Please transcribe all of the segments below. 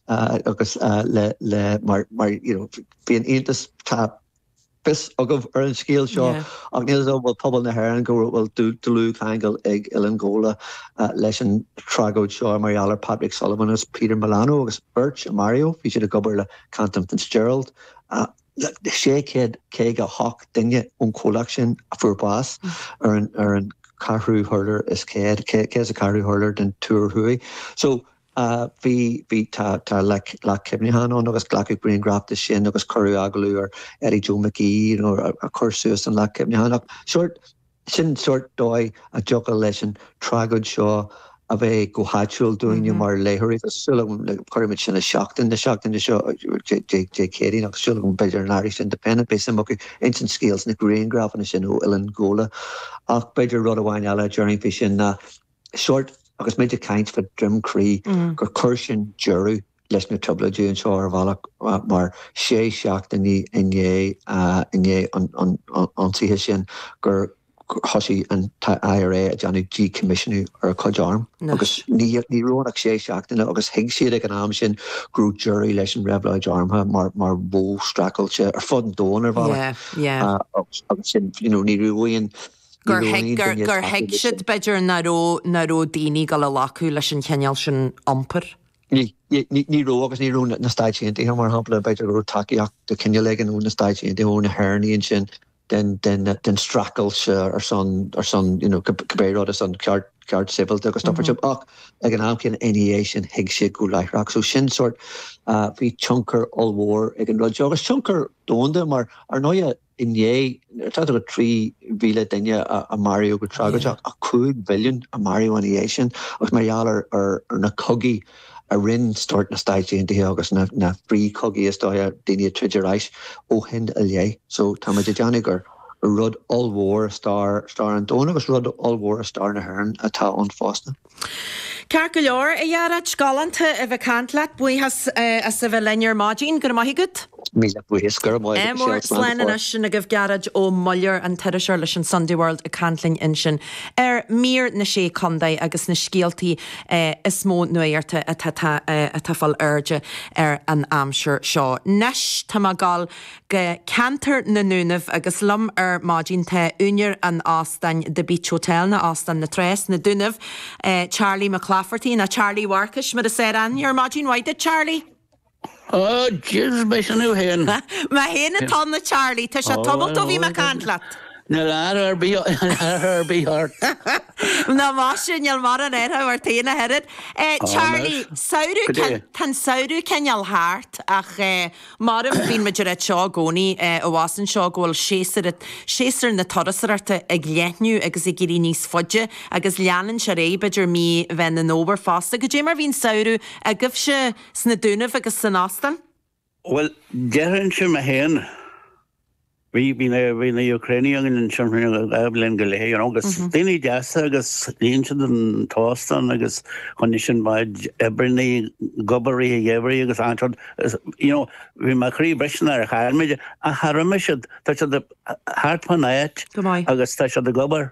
agus le le mar mar you know bhí an iontas tá fios agaibh ar an scéal seo ach níl fhios agam an bhfuil pobal na hÉireann go bhfuil dlúthcheangal ag Oileán Ghabhla leis an tragóid seo mar gheall ar Patrick Sullivan agus Peter Milano agus beirt a maraíodh bhí siad ag obair le Cantor Fitzgerald 658 duine ón chomhlacht sin a fuair bás ar an ar an ceathrú hurlár is 100 100 is a ceathrú hurlár den Túr Thuaidh so a bhí, bhí, tá, tá like Leac Cuimhneacháin ann agus glacadh grianghraif de sin agus cuireadh agallamh ar Eddie Joe McGee you know a, a chuir suas an Leac Cuimhneacháin ach sórt, sin sórt dóigh a dtiocfadh leis an tragóid seo a bheith go háitiúil dúinne mar léitheoirí agus súil agam like, cuirimid sin i Seachtain na seachtaine seo Dé, Dé, Dé Céadaoin agus súil agam b'fhéidir an Irish Independent beidh suim acu ins an scéal sna grianghrafanna sin ó Oileán Ghabhla ach b'fhéidir rud amháin eile a déarfainn faoi sin ná sórt agus muid ag caint fa Droim Crí gur chuir sin deireadh leis na trioblóidí anseo ar bhealach mar sé seachtainí i ndiaidh an ionsaithe sin gur thoisigh an IRA a dhéanamh díchoimisiúnú ar a cuid arm agus ní raibh ann ach sé seachtaine agus thuig siad ag an am sin go raibh deireadh leis an reabhlóid armtha mar mar mhodh streachailte ar fud an domhain ar bhealach agus sin you know ní raibh aon gur thuig siad, b'fhéidir, nach raibh daoine ag dul a ghlacadh leis an chineál sin iompair. Ní raibh agus ní raibh na Stáit Aontaithe, mar shampla, b'fhéidir go raibh tacaíocht de chineál éigin ó na Stáit Aontaithe, ó na hÉireannaigh ansin den streachailt ar son, ar son, you know, cibé rud, ar son ceart, cearta sibhialta agus stopaird seo. Ach ag an am céanna, ina dhiaidh sin, thuig siad go láithreach. So sin sórt, bhí tionchar ollmhór ag an rud seo. Agus tionchar domhanda mar, ar ndóighe, inné, nuair atá agat 3,000 duine a maraíodh go tragóideach, ach 5 mhilliún a maraíodh ina dhiaidh sin, agus mar gheall ar na cogaí a rinn sórt na Stáit Aontaithe agus na frithchogaí, is dóiche, daoine ag troid ar ais ó shin i leith. So, tá muid ag déanamh gur rud ollmhór i stair an domhain, agus rud ollmhór i stair na hÉireann atá ann fosta. Ceart go leor, a Ghearóid. Galánta a bheith ag caint leat. Buíochas as a bheith linn ar maidin. Go raibh maith agat. Míle buíochas. Go raibh maith agat, Michelle. Slán Slán anois. Sin agaibh Gearóid Ó Muilleoir, an t-iriseoir leis an Sunday World ag caint linn ansin ar Mír na Sé Contae agus na scéaltaí is mó nuachta atá atá ag fáil airde ar an aimsir seo. Nois, tá mé ag dul. go ceantar na nDúnaibh agus liom ar maidin tá úineir an óstáin The Beach Hotel nó Óstán na Trá sna Dúnaibh, Charlie Mac Laifeartaigh, nó Charlie Mharcais mar is fearr aithne air. Maidin mhaith duit Charlie! Oh jeez, beidh sin thú fhéin! Mé fhéin atá ann a Charlie, tá sé tamalt ó bhí mé ag caint leat! Níl athrú ar bith ort! Ná más sin níl mórán athrú ort fhéin ach oiread. Charlie, samhradh, tá an samhradh cineál thart ach eh, Mar a bhíonn muid ag ráit seo i gcónaí, eh, abhus anseo go bhfuil séasúr, séasúr na turasóireachta ag leathnú agus ag éirí níos faide agus leanann sé ar aghaidh, b'fhéidir mí mheán an fhómhair fosta. Goidé mar bhí an samhradh agaibhse sna Dúnaibh agus san Óstán? Bhuel, déarfainnse mé féin Bhí bhí na bhí na Ucraenaigh againn ansin fá choinne dhá bhliain go leith you know agus daoine deasa agus líon siad an t-óstán agus choinnigh sin mo chuid oibreannaí ag obair i rith an gheimhridh agus anseo is you know bhí mé croíbhriste nuair a chaill mé iad ach tá roimis siad tá siad thart fán áit Go maith. agus tá siad ag obair.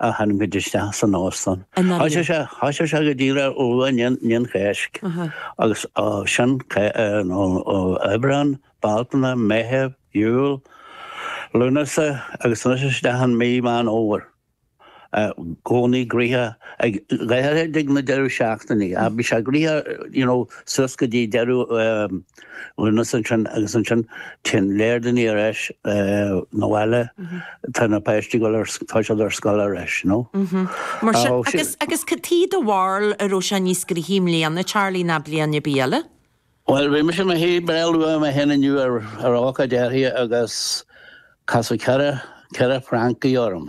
a tharraingt isteach san óstán. Thoisigh sé go díreach go luath i ndiaidh an Cháisc agus sin Aibreán, Bealtaine, Meitheamh, Iúil, Lúnasa agus anois isteach i mí Meán Fhómhair. I gcónaí gnaitheach ach go háirithe ag na deireadh seachtainí ach bhí sé gnaitheach you know suas go dtí deireadh mhí Lúnasa ansin agus ansin. Téann lear daoine ar ais 'na bhaile, tá na páistí ag gabháil ar, tá siad ar scoil ar ais, you know. Mar sin, agus, agus caidé do bharúil an raibh sé níos gnaithí i mbliana, Charlie, ná bliain ar bith eile? Bhuel, bhí mise i mo shuí breá luath mé féin inniu ar, ar ócáid áirithe agus casadh ceithre, ceithre Francach orm.